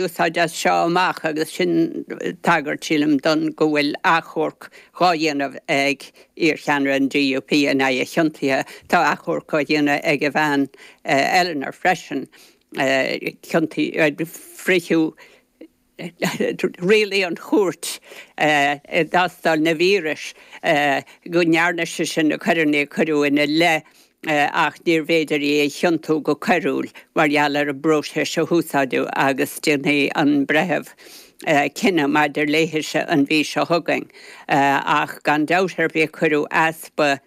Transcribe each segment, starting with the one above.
úsáide as seo amach agus sin tagairt, sílim, don go bhfuil achomharc dhá dhéanamh ag iarcheannaire an DUP in aghaidh a chiontaithe. Tá achomharc á dhéanamh ag a bhean Eleanor freisin. Ciontaíodh, rialaigh an chúirt i dtástáil na víris go ndearna sise na coireanna a cuireadh ina leith. ach níorbh fhéidir í a chiontú go coiriúil mar gheall ar an bpróiseas a húsáideadh agus déanfaidh an breitheamh cinneadh maidir léithise an mhí seo chugainn. Ach gan dabht ar bith cuireadh easpa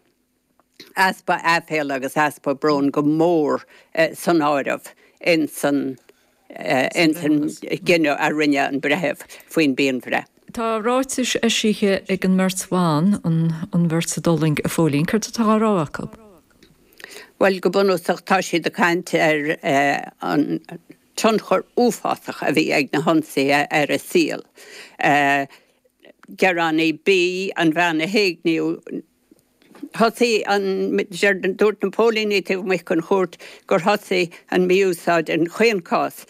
easpa aiféala agus easpa bróin go mór san áireamh insan insan gcinneadh a rinne an breitheamh faoin bpianbhreith. Tá ráitis eisithe ag an mbeirt bhan, an bheirt a d'fhulaing a Phóilín. Céard atá á rá acu? Bhuel, go bunúsach tá siad ag caint ar an tionchar uafásach a bhí ag na hionsaithe ar a saol. Gearánaí B, an bhean a héigníodh, thosaigh an, dúirt na póilíní taobh amuigh den chúirt gur thosaigh an mí-úsáid, an chéad chás,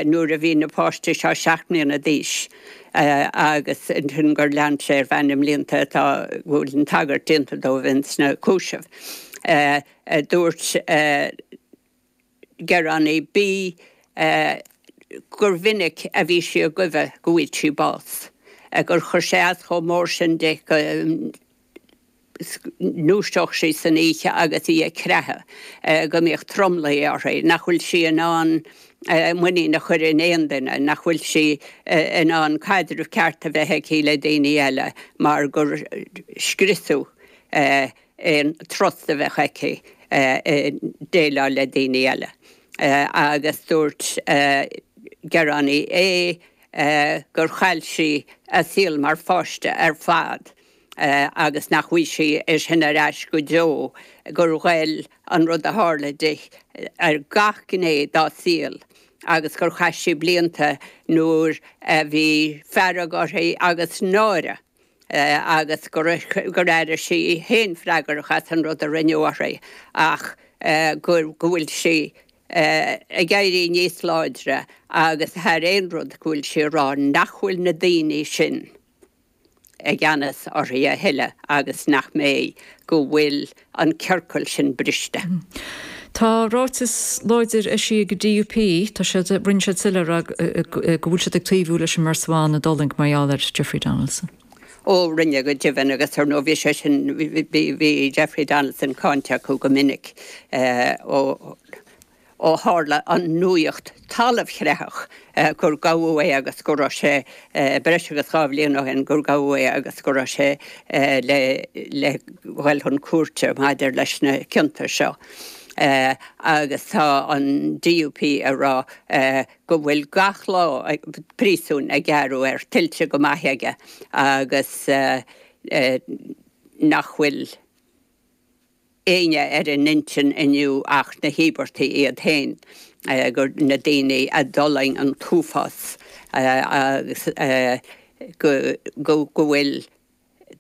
nuair a bhí na páistí seo seacht mbliana d'aois agus ansin gur lean sé ar feadh na mblianta atá, go bhfuil an tagairt déanta dóibh ins na cúisimh. Dúirt. gearánaí B gur mhinic a bhí sí ag guibhe go bhfaigheadh sí bás, gur chuir sé as chomh mór sin di go ndúiseodh sí san oíche agus í ag creathadh, go mbíodh tromluí uirthi, nach bhfuil sí in ann muinín a chur in aon duine, nach bhfuil sí in ann caidreamh ceart a bheith aici le daoine eile mar gur scriosadh í. aon trust a bheadh aici i déileáil le daoine eile agus dúirt gearánaí A gur chaill sí a saol mar pháiste ar fad agus nach bhfaighidh sí é sin ar ais go deo, gur ghoill an rud a tharla di ar gach gné dá saol agus gur chaith sí blianta nuair a bhí fearg uirthi agus náire. agus gur airigh sí í féin freagrach as an rud a rinneadh uirthi ach go bhfuil sí ag éirí níos láidre agus thar aon rud go bhfuil sí ag rá nach bhfuil na daoine sin i gceannas uirthi a thuilleadh agus nach mbeidh, go bhfuil an ciorcal sin briste. Tá ráiteas láidir eisithe ag an DUP. Tá siad, rinne siad soiléir go bhfuil siad ag taobhú leis an mbeirt bhan a d'fhulaing mar gheall ar Jeffrey Donaldson. Ó, rinne go deimhin agus ar ndóigh bhí sé sin, bhí Jeffrey Donaldson cáinte acu go minic ó, ó tharla an nuaíocht talamhchreathach gur gabhadh é agus go raibh sé, breis agus dhá bhliain ó shin, gur gabhadh é agus go raibh sé le dhul chun cúirte maidir leis na cionta seo. Agus tá an DUP ag rá go bhfuil gach lá príosúin a gearradh air tuillte go maith aige agus nach bhfuil. éinne ar a n-intinn inniu ach na híobartaigh iad féin, na daoine a d'fhulaing an t-uafás agus go bhfuil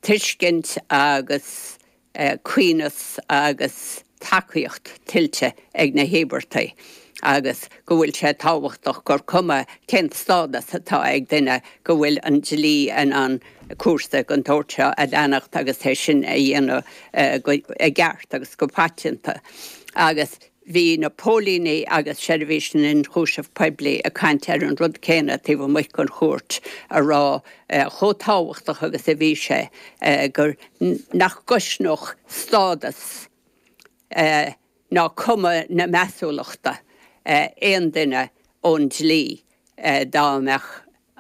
tuiscint agus cineáltas agus tacaíocht tuillte ag na híobartaigh agus go bhfuil sé tábhachtach gur cuma cén stádas atá ag duine go bhfuil an dlí in ann cúrsa den tsórt seo a leanacht agus é sin a dhéanamh i gceart agus go paiteanta. Agus bhí na póilíní agus Seirbhís an Ionchúisimh Poiblí ag caint ar an rud céanna taobh amuigh den chúirt, ag rá chomh tábhachtach agus a bhí sé gur nach gcoiscfeadh stádas ná cuma na measúlachta aon duine ón dlí dá mbeadh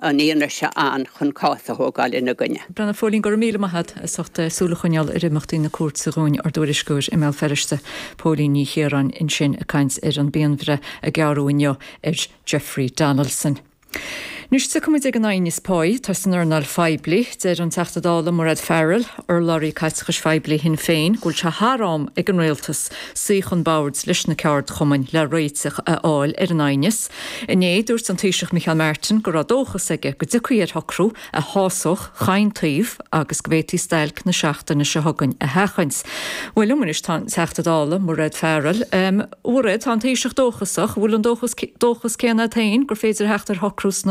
an fhianaise ann chun cás a thógáil ina gcoinne. Bhuel a Phóilín, Go raibh míle maith agat as ucht súil a choinneáil ar imeachtaí na cúirte dhúinn, ár dtuairisceoir i mBéal Feirste, Póilín Ní Chiaráin ansin ag caint ar an bpianbhreith a gearradh inniu ar Jeffrey Donaldson. Anois tiocfaidh muid ag an aighneas páí, tá san earnáil phoiblí. Deir an Teachta Dála Mairéad Farrell, urlabhraí Caiteachais Phoiblí Shinn Féin, go bhfuil sé thar am ag an Rialtas suí chun boird leis na ceardchumainn le réiteach a fháil ar an aighneas, Inné, dúirt an Taoiseach Micheál Martin go raibh dóchas aige go dtiocfaí ar shocrú a shásódh chaon taobh agus go bhféadfaí stailc na seachtaine seo chugainn a sheachaint. Bhuel, liom anois tá an Teachta Dála, Mairéad Farrell, a Mhairéad, tá an Taoiseach dóchasach, an bhfuil an dóchas céanna agat féin gur féidir theacht ar shocrú sna